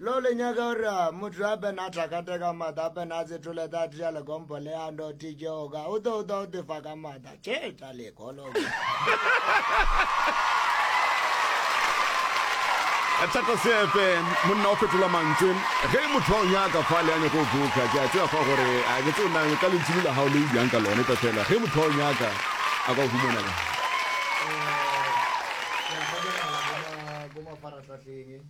Lo le nyaka gore ah, motho a bena a tlakate ka mata a bena a tsetole ta tša lekompo le a ndo tijeoka o to o to o tefa ka mata tše tša lekolo thata seepe monna o fetola mantswe ge e motho wa o nyaka fa le yane go buka ke a tsea fa gore a ke tse nang ka lentsini la gago le o bjang ka lone tsa fela ge motho wa o nyaka a ka o humanela eh,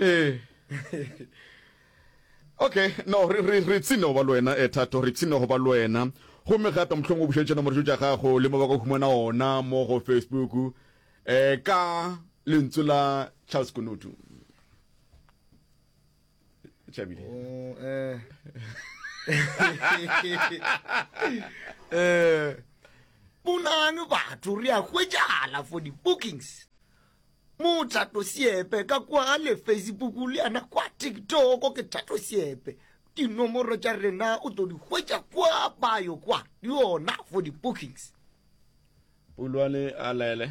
ee okay no re re re tsine go ba le wena e eh, thato re tsine go ba le wena gomme gape mohlong o bušetše nomoro tša gago le mo ba ka humana ona mo go facebook um ka lentswe la charles konotu tšhabile oh, eh. eh. bonane batho re a hwetšala for di-bookings Mothato Siepe ka kwa le Facebook le yana kwa TikTok ke Thato Siepe. Dinomoro tša rena o tlo di hwetša kwa bio kwa di yona for di bookings. Pulwane a lele.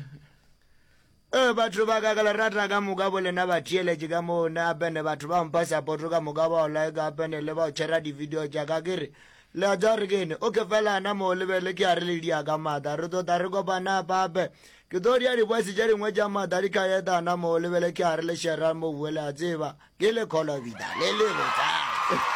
Eh, batho ba ka kala rata ka moka bo lena ba theeletše ka moo ne apene batho ba mpa sapoto ka moka ba olae ka apene le ba o tšhera di-video tša ka kere le a tsa re kene o ke felana moo lebele ke a re le dia ka mata re tota re kopana pape Ke tlo dia dibwesi tše dingwe tša mata di ka etana moo, le bele ke a re le Sheryl Mobue le a tseba, ke le kolobida le le botala.